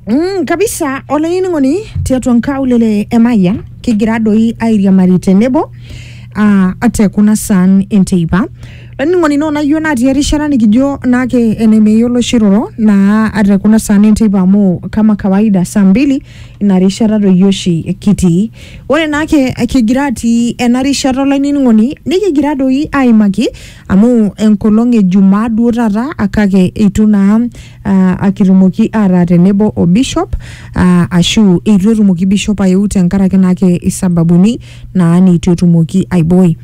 Mm, kabisa olainining'oni tiatua nkaulele e Mayian kigira doi airiamari tenebo ah, ate kuna saan enteipa olainining'oni naa onayio natii erishata nikijo naake enemeyiolo shiroro naa ate kuna saan enteipa amu kama kawaida saa mbili ina rishata doi oshi kitii ore naake kigira atii ena rishata olainining'oni nikigira doi aimaki amu enkolong e jumaa duo taata ah, kake eitu naa ah, akitumoki ataa tenebo o bishop ah, ashu eitu etumoki bishop ayeu tenkaraki naake isababuni naa neitu etumoki aiboi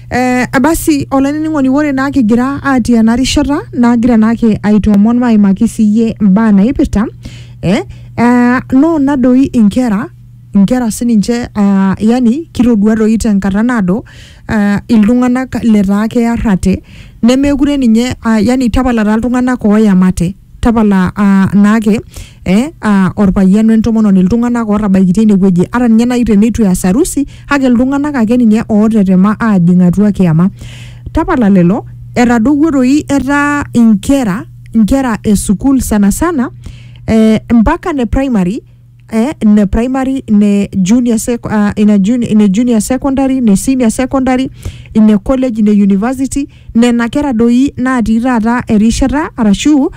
Eh, basi olainining'oni ore naa kigira atii ena rishata nagira naake aitoomon maimaki siyie imbaa naipirta eh, eh, noona doi inkera inkera sininche ah, yani kitodua doi tenkata naado uh, iltung'anak letaa kearrate nemekure ninye uh, yani tapala taa iltung'anak ooyamate tapala uh, naake eh, uh, orpayian wentomononi iltung'anak ootabaikitia inewueji ata ninye nai teneitu eas harusi kake iltung'anak ake ninye ootetema aajing atua kiyama tapala lelo etadowuo doi etaa inkera inkera e sukuul sana sana eh, mpaka ne primary eh, ne primary ne junior sec, uh, ina juni, ne junior secondary ne senior secondary ine college ne university nena kera doi natii taata erishata arashu uh,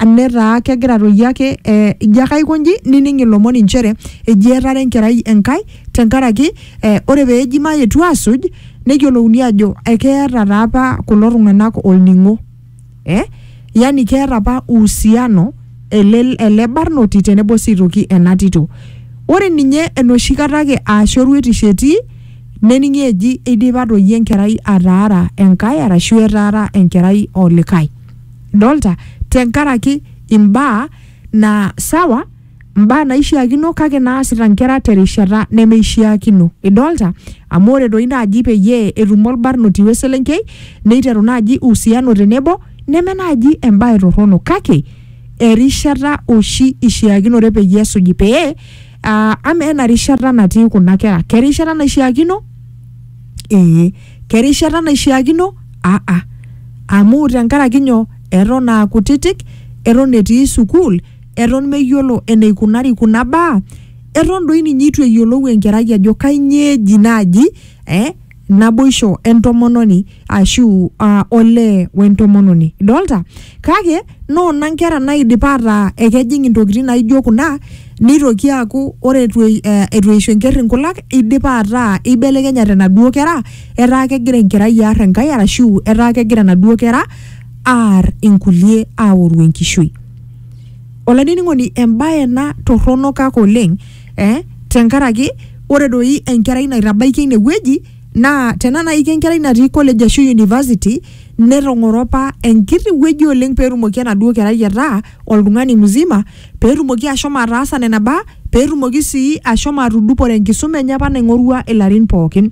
netaa kegira doi ake eh, ijo ake aikonji nining ilomon inchere eji etara enkerai enkai tenkaraki eh, ore peeji mayetu asuj neyiolouni ajo ekeeta taa apa kulo tung'anak olning'o eh? yani keeta apa uhusiano ele, ele barnoti tenebo sii aitoki ena tito ore ninye enoshi kata ake aashu eruetisho etii nening'i eji eidipa doi enkerai ataara enkae arashu etaara enkerai olikae dolta tenkaraki imbaa naa sawa mbaa naishiakino kake naasita nkera terishata nemeishiakino. Idolta? Amu ore doi naaji peyie etum olbarnoti we selenkei neiteru naaji uhusiano tenebo neme naaji embae torrono kake erishata oshi ishiakinore peyie esuji pee uh, ama ena rishata natii kuna kera kerishata naishiakino ee kerishata naishiakino aa ah, ah. amu tenkaraki nyoo eton aa kutitik eton etii sukuul eton meyiolo eneikunari kuna baa eton doi ninye eitu eyiolou enkerai ajo kainyoo eji naaji eh, naboisho entomononi ashu uh, olee wentomononi idolta kake noona nkera naidipa ataa ekejing intokitin naijo kuna nitoki aaku ore etu ei- eh, etu eisho enkerr inkulak idipa ataa eibelekenyate naduo kera etaa kegira enkerai aar enkae arashu etaa kegira naduo kera aar inkulie aoru enkishui olainining'oni embaye ena torrono kake oleng eh, tenkaraki ore doi enkerai naitabaikia inewueji naa tena naiki enkerai natii college ashu university netong'oro apa enkiti wueji oleng petumoki enaduo kerai ataa oltung'ani mzima petumoki ashomo ataasa nena baa petumoki sii ashomo atudupore enkisuma enye apa naing'orua ilarin pookin.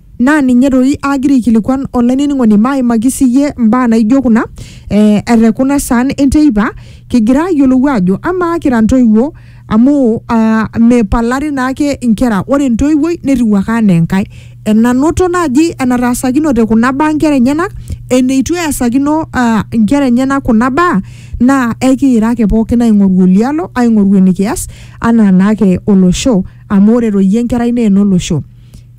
Naa ninye doi aagira aikilikuan olainining'oni maaimaki siyie mbaa naaijo kuna eh, ete kuna saan enteipa kigira aayiolou aajo amaa kira ntoiwuo amu ah, meipalari naake nkera ore entoiwuoi netiu ake anaa enkae enanoto naaji enataasakinote kuna baa nkera enyenak eneitu easakino ah, nkera enyenak kuna baa naa ekiira ake pookin aing'oru olialo aing'oru enikias anaa naake olosho amu ore doi enkerai naa enolosho.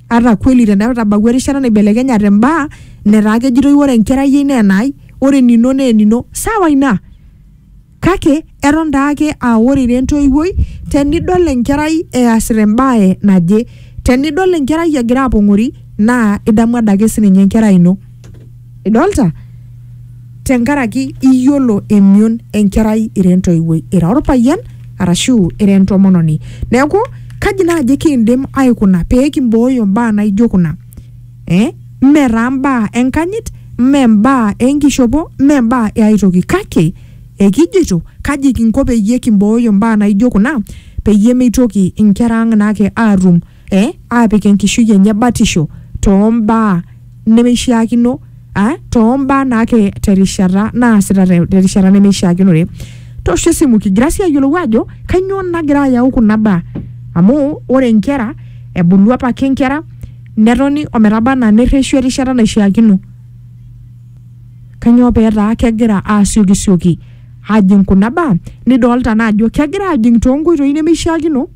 ata kweli tenetabawua erishata naibelekenyate mbaa netaa kejitoi ore enkerai ai naa enai ore enino naa enino sawa ina kake eton taake aa ore ira entoiwuoi tenidol enkerai easita embae naje tenidol enkerai egira apong'ori naa idamu adake sininye enkerai ino idolta tenkaraki iyiolo emion enkerai ira entoiwuoi ira orpayian arashu ira entomononi neeku kaji naaji kiindim aikuna pee kimbooyo mbaa naijo kuna eh? mme taa mbaa enkanyit mme mbaa enkishopo mme mbaa e ae toki kake ekijito kaji kinko peyie kimbooyo mbaa naijo kuna peyie meitoki inkera ang naake aatum eh, aapik enkishui enye batisho too mbaa nemeishiakino ah, too mbaa naake terishata naasita te- terishata nemeishiakinore tosho esimu kigira sii ayiolou ajo kainyoo nagira ayau kuna baa amu ore nkera ebulu apake nkera netoni ometaba anaa nerreshu erishata naishiakino kanyoo peetaa kegira asiokisioki ajing kuna baa nidolta naa ajo kegira ajing toonkoitoi nemeishiakino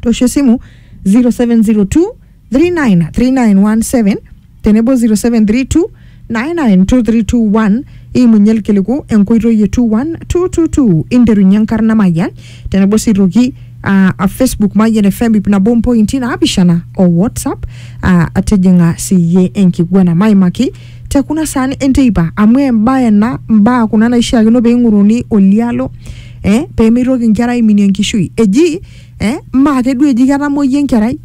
tosho esimu 0702 393917 tenebo 0732 992321 imunye ilkiliku enkoitoi e 21222 interunye enkarna mayian tenebo sii toki ah, a facebook mayian fm ip nabo mpointi naapishana o whatsapp ah, atijing'a siyie enkiguana maimaki te kuna saan enteipa amu embae ena mbaa kuna naishiakino pee ing'oruni olialo eh, pemeitoki nkera aiminie enkishui eji eh, maa keduo eji ketamoyia enkerai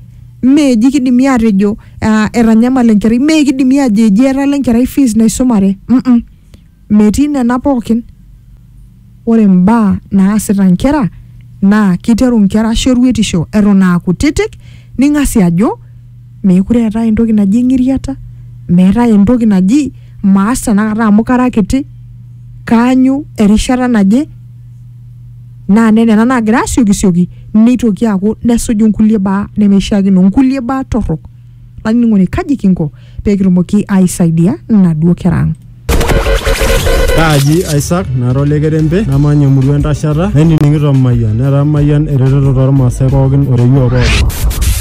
mee eji kidimi atejo uh, etanyamala enkerai mee kidimi ajo eji etala enkerai fees naisumare mm -mm. metii nena pookin ore mbaa naasita nkera naa kiteru nkera shoruetisho eton aa kutitik ning'asi ajo meekure eetae entoki naji eng'iriata meetae entoki naji maas tenakata amu kara kiti kaanyu erishata naje naa nena nena naagira asiokisioki neitoki aaku nesuju inkulie baa nemeishiakino inkulie baa torrok olainining'oni kaji kinko pekitumoki aisaidia inaduo kera ang. Kaaji Isaac nara ole kerembe namanya emurua entashata nainining'ito Mayian netaa Mayian eretoto tormaasai pookin oreyioo pookin.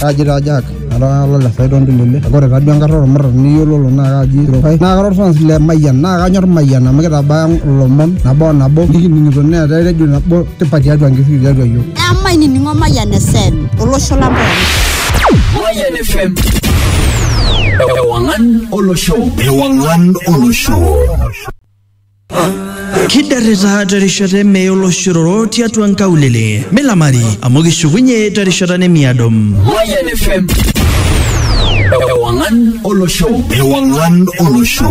Kaaji taa Jack nara ole le Saidon Tulele kake ore taduo enkarna ormurran niyiololo naa kaaji Sirokai naa kara orfans le Mayian naa kanyor Mayian amu kitabaya ilomon nabo o nabo nikining'ito neeta eredio nabo tipat tiatua nkishui tiatua iyiook. Emainining'o Mayian FM olosho lang pookin. Mayian FM. Ewang'an olosho ewang'an olosho kiderrita terishata eme oloshororo tiatua nkaulele milamari amu kishukunye terishata nemiado Mayan FM ewang'an olosho ewang'an olosho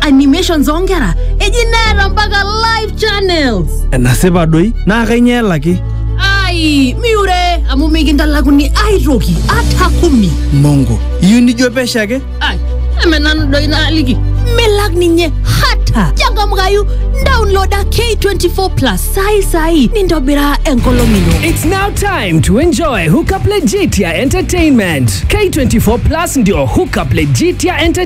animations oonkera eji neeta mpaka live channels enasipa doi naa kainyoo elaki ai miure amu mikintalakuni aitoki ata kumi mongo iyieu nijo pesho ake ai eme nanu doi naaliki milak ninye hata changamkayu download ake 24 plus sai sai nintobiraa enkolong ino It's now time to enjoy Hookup Legitia Entertainment. K24 Plus ndio Hookup Legitia Entertainment.